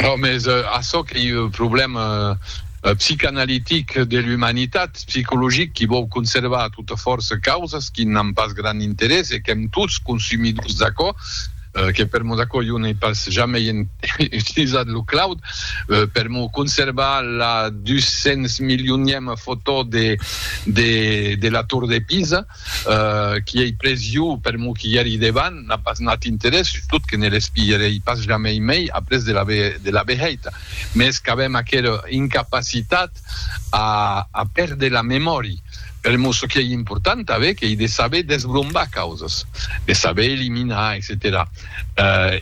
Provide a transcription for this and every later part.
Ò mès açò qu'ei un problèma psicanalitic de l'umanitat, psicologic, qui vòu conservar a tota fòrça causas qui n'an pas grand interès e qu'èm tots consumidors d'aquò, que per Monaco jo n'ei pas jamei utilizat lo cloud per m'o conservar la 200 milionièma fotò de la Tor de Pisa. qui ei pres jo per m'o quilheri devan, n'a pas nat interès, sustot que ne l'espilherei pas jamei mei après de l'aver de l'aver hèit, mès qu'avem aquera incapacitat a a pèrder la memòri, per mos çò qui ei important aver qu'ei de saber desbrombar causas, de saber eliminar, etcetèra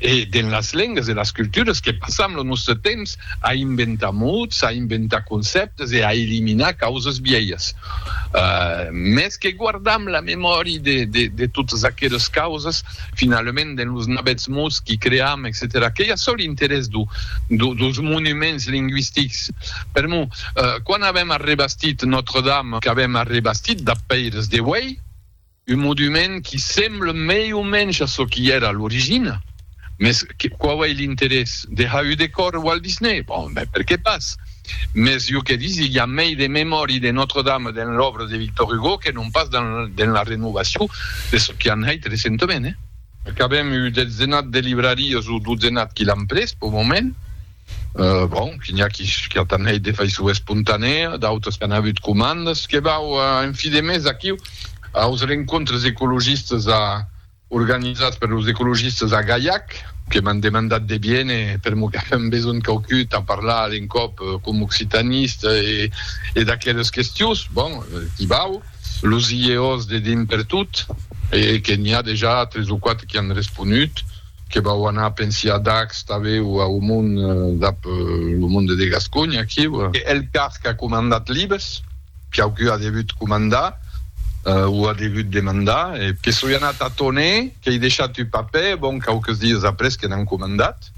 E dens las lengas e las culturas que passam lo nòstre temps a inventar mots, a inventar concèptes e a eliminar causas vièlhas. Mès que guardam la memòri de totas aquelas causas, finalament dens los navèths mots qui cream, etcetèra Qu'ei açò l'interès dos monuments lingüistics. Per mo, quan avèm arrebastit Notre-Dame, qu'avèm arrebastit dab pèires de uèi, Un modument qui semble mei o mensh a çò qui èra a l'origina. Mès quau ei l'interès? De ha eu de còr Walt Disney? Bon, ben, per qué pas? Mès jo que disi, i a mei de memòri de Notre-Dame dens l'òbra de Victor Hugo que non pas dens la renovacion de çò qui an hèit recentament, eh? Qu'avèm eu dezenat de librarias o dozenat qui l'an pres, pau moment. Bon, que n'i a qui qu'atan hèit de faiçon espontanèa, d'autres qu'an avut comandas. Que vau en fi de mes aquiu aus rencontres ecologistas organizats per los ecologistas a Gaiac, que m'an demandat de viene permo qu'avèm besonh quauqui tà parlar a l'encòp com occitanista e d'aqueles questions. Bon, qu'i vau, los IEOs de dimpertot, e que n'i a dejà tres o quatre qui an responut. que vau anar pensi a Dax tanben o au mon dab lo monde de Gasconha aquiu. El car qu'a comandat libes, quauqui a degut comandar o a degut demandar e. Que soi anat a Tonè, qu'ei deishat un papè, bon, quauques dies après que n'an comandat,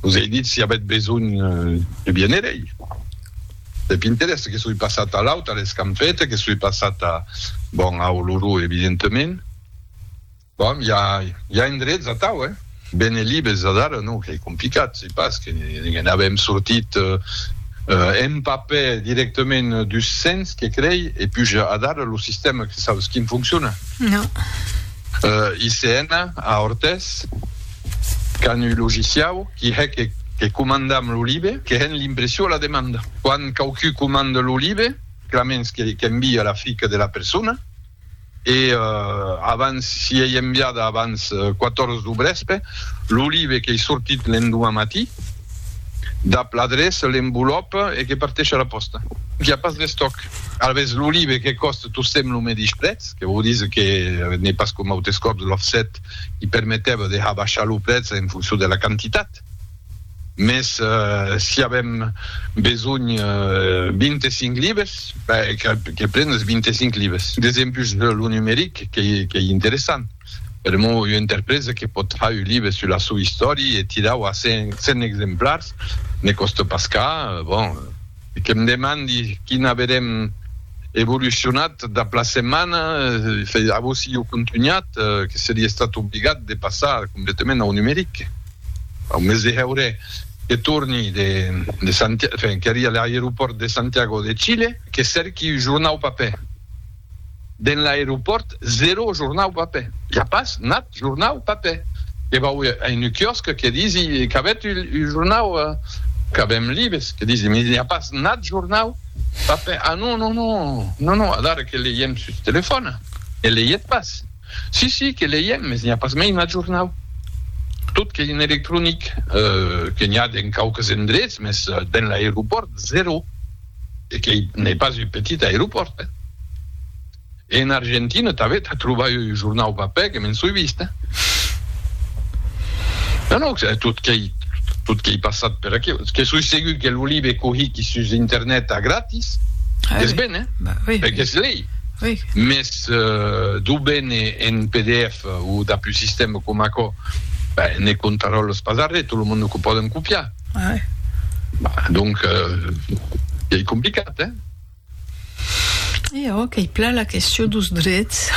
los ei dit si avèt besonh de viéner ei deb interès, que soi passat a l'aut, a l'Escampeta, que soi passat a, bon, a Oloró evidentement. Bon, i a endrets atau, eh? Benelibes adara non qu'ei complicat, se pas que ne'n avèm sortit en papè directament dus cents, que crei, e puja adara lo sistèma que sabes quin foncciona? Non. ICN a Ortès, qu'an un logiciau qui hè que que comandam lo libe, que hèn l'impression a la demanda. Quan quauqui comanda lo libe, clamens que qu'envia la fica de la persona, e abans s'i ei enviada abans 14 du brèspe, lo live qu'ei sortit l'endoman matí, dab l'adreça, l'envolòp e que parteish a la pòsta. Qu'i a pas d'estòc. Alavetz, lo live que còste tostemps lo medish prètz, que vòu díser que n'ei pas coma autes còps l'offset qui permetèva de har baishar lo prètz en foncion de la quantitat. Mès si avèm besonh 25 libes, ben que pren es 25 libes. Desempus lo numeric qu'ei interessant, per emor ua interpresa que pòt far un libe sus la sua istòria e tirau a 100 exemplars ne còsta pas cas, bon. E que me demandi quina averem evolucionat dab la setmana, a vos si jo contunhat, que seria estat obligat de passar completament au numeric, au mes de hèure que torni de Santiago, enfin, qu'èri a l'aeropòrt de Santiago de Chile, que cèrqui un jornau papèr. Den l'aeropòrt zero jornau papè. I a pas nat jornau papè. Que vau a unu quiòsc que disi qu'avètz un jornau qu'avèm libes que disi me i a pas nat jornau papè ah non non non non non adara que leièm sus telefòna ne leièt pas si si que leièm mes n'i a pas mei nat jornau tot qu'ei en electronic que n'i a den quauques endrets mes den l'aeropòrt zero. e qu'ei n'ei pas un petit aeropòrt, eh? E en Argentina tanben tà trobar un jornau papèr que me'n soi vist, eh? Non, non, que tot qu'ei, tot qu'ei passat per aquí, que soi segur que lo libe cohí qu'i sus internet a gratis, qu'es ben, eh? E qu'es lei, mès d'o bene en pdf o dab un sistèma coma aquò, ben, ne contaròles pas arrè, tot lo monde qu'o pòden copiar. Ai. Bah, donc, eh, ei complicat, eh? E òc, ei plan la question dos drets.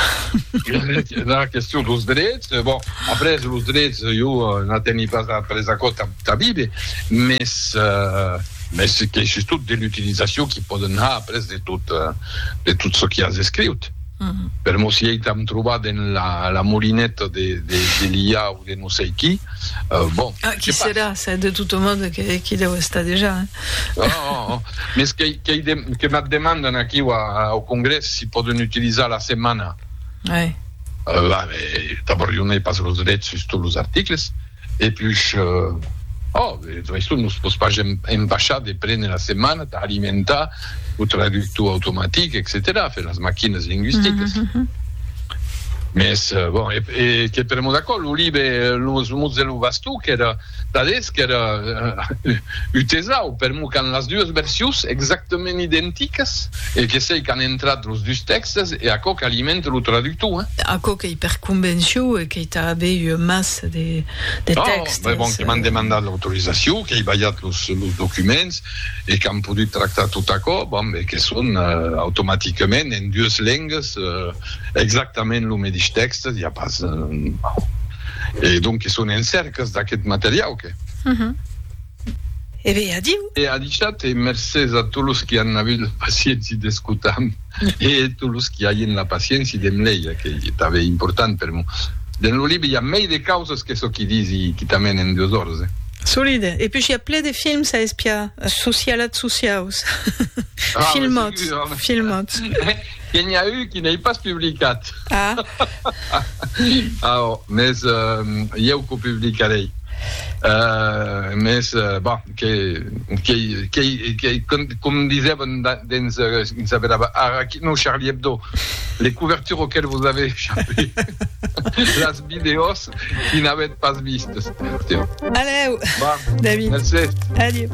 la question dos drets, bon, après, los drets, jo n'ateni pas a après aquò ta, ta vive, mes, eh, mes que sustot de l'utilisacion qui pòden har après de tot, de tot çò qui as escriut. per mos i eitam trobar dens la molineta de l'IA o de no sei qui, bon, se pas. Qui serà? Se de tot mòde qu'i deu estar dejà, eh? Oh, oh, oh. Mès que m'ac demandan aquiu au Congrès si pòden utilizar la setmana. Uèi. Bah, mais, d'abòrd, jo n'ai pas los drets sus tots los articles. e pus ò de tota façon nos pòs pas empachar de prene la setmana tà alimentar lo traductor automatic etcetèra fe las maquinas linguisticas mes bon e que per mos acò lo libe los mots de lo vastó qu'èra tadés qu'èra utesau per mos qu'an las duas versions exactament identicas e que sei qu'an entrat los dus tèxtes e aquò qu'alimenta lo traductor aquò qu'ei per convencion e que Tà avei ua massa de tèxtes. Bai bon que m'an demandat l'autorizacion, qu'ei balhat los documents e qu'an podut tractar tot aquò, bon, e que son automaticament en dues lengas exactament lo medish tèxte, i a pas, e donc que son en cèrcas d'aqueth materiau que. E be, adiu! E adishat e mercés a tot los qui an avut la pacienci d'escotam e tot los qui aien la pacienci de m leir, que ei tanben important per mo. Dens lo libre i a mei de causas que çò qui disi quitament en dues ores, eh! Solide. E pus i a ple de films a espiar, socialats sociaus, filmats, filmats. Que n'i a un qui n'ei pas publicat. Ah. Aò, mès ieu qu'o publicarei. Mès, bon, que, qu'ei, qu'ei, qu'ei, com disèvan dens, quin se vedava ara aquí, non, Charlie Hebdo, les couvertures auxquelles vous avez échappé, las vidèos qui n'avètz pas vistes. Adeu, David. Mercé. Adieu.